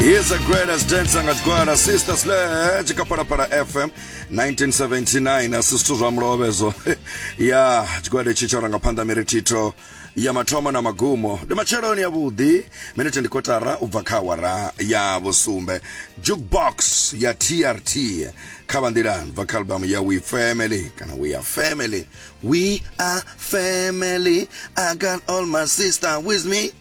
Here's the greatest dance angadzigwara sister sledge kapara para fm 1979 asi zwithu zwa mulove zvo ya tshigwada itshi tsha ranga phanḓa miri thitho ya mathomo na magumo ndi matsheloni avhuḓi minete ndi kotara u bva kha awara ya vhusumbe jukebox ya trt kha vha nḓilani bva kha albamu ya we family kana we are family we are family i got all my sister with me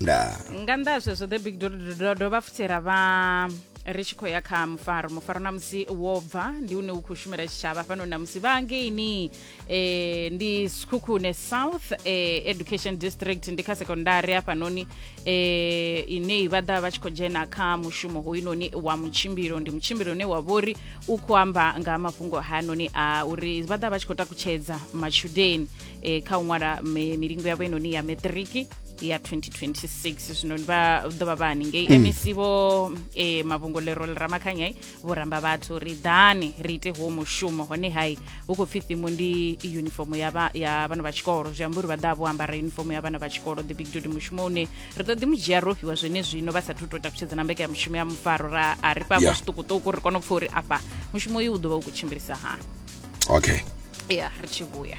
ndaa nga nnḓa ha zwezwo the big do do- do- dovha futhi ra vha ri tshi khou ya kha mufaro mufaro na musi wo bva ndi une u khou shumela tshitshavha fhano na musi vha ngeini eh, ndi skhukhune south eh, education district ndi kha sekondari hafhanoni eh, ine vha ḓa vha tshi khou dzhena kha mushumo hoyunoni wa mutshimbilo ndi mutshimbilo une wa vhori u khou amba nga ha mafhungo hanoni a uri vha ḓa vha tshi khou takutshedza matshudeni eh, kha u ṅwala mi- milingo yavho inoni ya matriki ya 2026 zwino ndi vha ḓo vha vha haningei mm. mec vho e, mavhungolero ḽi ramakhanyai vho ramba vhathu ri ḓani ri ite huwo mushumo hone hai hu khou pfhi thimu ndi unifomo ya vhana vha tshikolo zwi amba uri vha ḓa vho ambara unifomo ya vhana vha tshikolo the big duty mushumo une ri ḓo ḓi mu dzhia ro fhiwa zwene zwino vha sathu tou takutshedza na mbeka ya mushumo ya mufaro ra a ri fhafho zwiṱukuṱuku ri kone u pfha uri afha mushumo uyu u ḓo vha u khou tshimbilisa hani okay ya ri tshi vhuya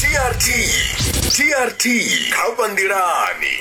trt trt kha vha nḓilani